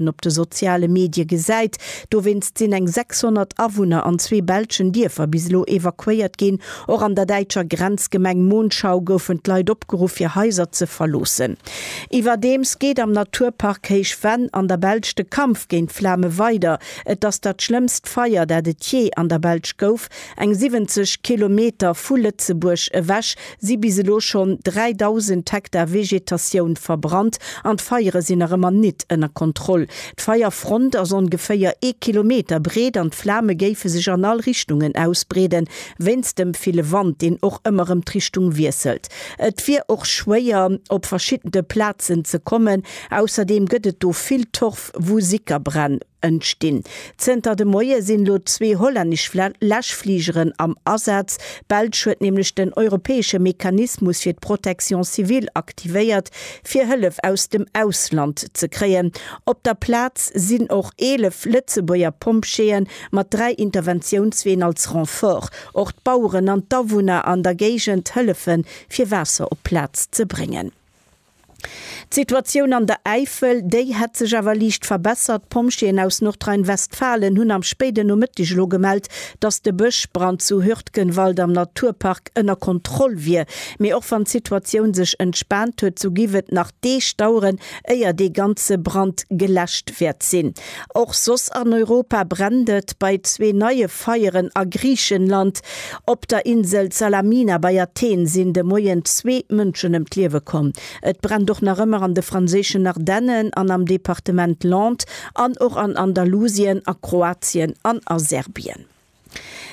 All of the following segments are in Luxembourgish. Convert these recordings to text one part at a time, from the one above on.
en op de soziale Medie gesäit. Dowéinst sinn eng 600 Awunner an zwee belschen Dierfer bis elo evakuéiert ginn. Och an der däitscher Grenzgemeng Monschau goufen d'Leit opgeruff fir Haiser ze verloossen. Iwwerdeems geet am Naturpark Héich Venn an der Belsch de Kampf géint d'Flame weider. Et ass dat schlëmmst Feier dat et jee an der Belsch gouf. Eng 70 Kilometer vu Lëtzebuerg ewech si bis elo schonn 3.000 Hektar Vegetatioun verbrannt an d'Feiere sinn nach ëmmer nit ënner Kontroll. D'Feierfront ass ongeféier ee Kilometer breet an d'Flame géife sech an all Richtungen ausbreeden, wéinst dem ville Wand, deen och ëmmer rëm d'Richtung wiesselt. Et wier och schwéier, op verschidde Plazen ze kommen. Ausserdeem gëtt et do vill Torf, wou Sickerbränn. Entstinn. Zënter de Moie sinn elo zwee hollännesch Läschfligeren am Asaz. D'Belsch huet nämlech den europäesche Mechanismus fir d'Protection civile aktivéiert, fir Hëllef aus dem Ausland ze kréien. Op der Plaz sinn och 11 Lëtzebuerger Pompjeeë mat dräi Interventiounsween als Renfort. Och d'Baueren an d'Awunner an der Géigend hëllefe fir Waasser op d'Plaz ze bréngen. D'Situatioun an der Äifel, déi hätt sech awer liicht verbessert. D'Pompjeeën aus Nordrhein-Westfalen hunn am spéiden Nomëtteg elo gemellt, datt de Bëschbrand zu Hürtgenwald am Naturpark ënner Kontroll wier. Mee och wann d'Situatioun sech entspaant huet, sou géif et nach Deeg daueren, éier dee ganze Brand geläscht wäert sinn. Och soss an Europa brennt et. Bei zwee neie. Feieren a Griichenland, Op der Insel Salamina bei Athen sinn de Moien zwee Mënschen ëm d'Liewe komm. Et brennt och nach ëmmer an de franséischen Ardennen an am Departement Landes an och an Andalusien, a Kroatien an a Serbien.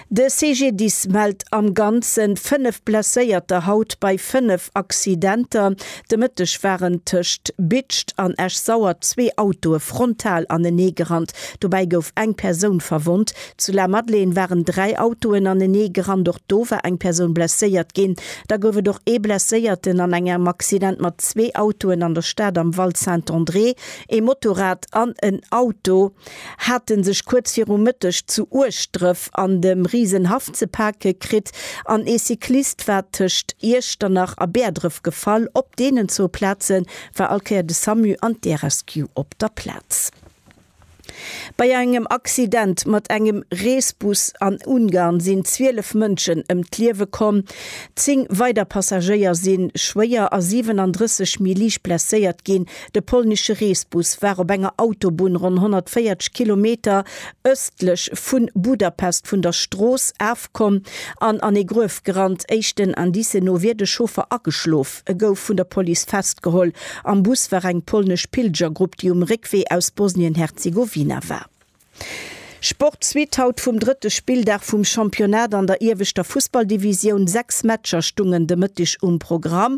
De CGDIS mellt am Ganzen fënnef Blesséierter haut bei fënnef Accidenter. De Mëtteg waren tëscht Bitscht an Esch-Sauer zwee Autoe frontal anenee gerannt. Dobäi gouf eng Persoun verwonnt. Zu La Madeleine waren dräi Autoen anenee gerannt. Och do war eng Persoun blesséiert ginn. Da gouf et och ee Blesséierten an engem Accident mat zwee Autoen an der Stad am Val Saint-André, ee Motorrad an en Auto. hate sech kuerz viru Mëtteg zu Ueschdrëf an dem Risenhaff ze pake kritt an ee Cyclist war tëscht Iechternach a Bäerdref gefall. Op deenen zwou Plaze war all Kéier de Samu an d'Air-Rescue op der Plaz. Bei engem Accident mat engem Reesbus an Ungarn sinn 12 Mënschen ëm d'Liewe komm, 10 weider Passagéier si schwéier a 37 méi liicht blesséiert ginn. De polnesche Reesbus war op enger Autobunn ronn 140 Kilometer ëstlech vu Budapest vun der Strooss afkomm an an ee Gruef gerannt. Éischten Indicen no wier de Chauffer ageschlof. E gouf vun der Police festgeholl. Am Bus war eng polnesch Pilgergrupp, déi um Réckwee aus Bosnien-Herzegowina war. Sport Suite haut vum drëtte Spilldag vum Championnat an der ieweschter Fussballdivisioun. Sechs Matcher stungen de Mëtteg um Programm.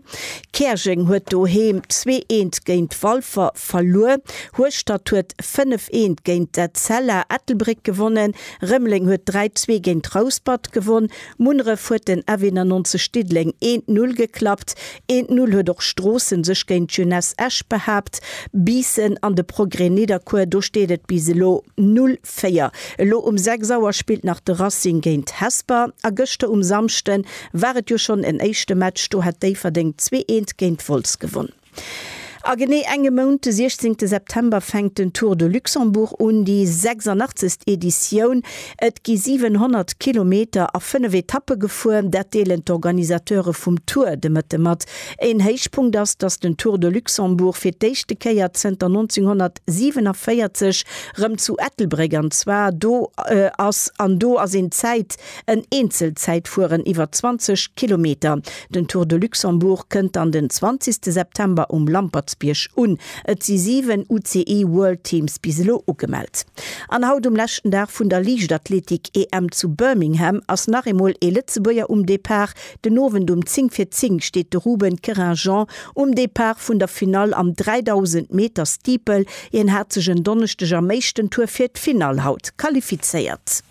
Käerjeng huet doheem zwee eent géint Walfer verluer. Hueschtert huet fënnef eent géint d'Etzella Ettelbréck gewonnen. Rëmeleng huet dräi zwee géint Rouspert gewonn. Munneref huet den F91 Diddeleng een d'Null geklappt. Een d'Null huet och Stroossen sech géint d'Jeunesse Esch behaapt. Biissen an de Progrès Nidderkuer, do steet et bis elo 0, 4. Elo um 6 Auer spillt nach de Racing géint Hesper. A gëschter um Samschden war et jo schonn en éischte Match, do hat Déifferdeng zwee eent géint Wolz gewonn. A genee enge Mount, de 16 September, fänkt den Tour de Luxembourg un, déi 86. Editioun. Et gi 700 Kilometer a fënnef Etappe gefuer, dat deelen d'Organisateure vum Tour de Mëtte mat. Een Héichpunkt ass, datt den Tour de Luxembourg fir d'éischte Kéier zënter 1947 rëm zu Ettelbréck an zwar do ass. An do ass een Zäit. En Eenzelzäitfueren iwwer 20 Kilometer. Den Tour de Luxembourg kënnt an den 20 September um Lampertsbierg un. Et si 7 UCI World Teams bis elo ugemellt. An haut um leschten Dag vun der Liichtathletik-EM zu Birmingham ass nach eemol ee Lëtzebuerger um Depart. Den Owend um 10 vir 10 steet de Ruben Querinjean um Depart vun der Finall am 3000 Meter Steeple. Hien hat sech en Donneschdeg am éischten Tour fir d'Finall haut qualifizéiert.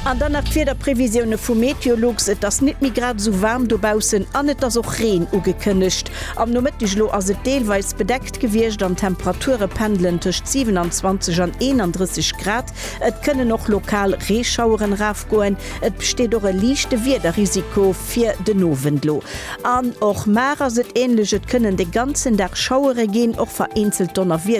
An dann nach d'Wiederprevisioune vu Meteolux, Et ass nit méi grad esou waarm dobaussen an et ass och Reen ugekënnegt. Am Nomëtteg elo ass et deelweis bedeckt gewiescht an d'Temperature pendelen tëscht 27 an 31 Grad. Et kënnen och lokal Reeschaueren erafgoen. Et besteet och e liichte Wiederrisiko fir den Owend elo. An och mar ass et änlech, et kënnen de ganzen Dag Schauere ginn, och vereenzelt Donnerwiedere.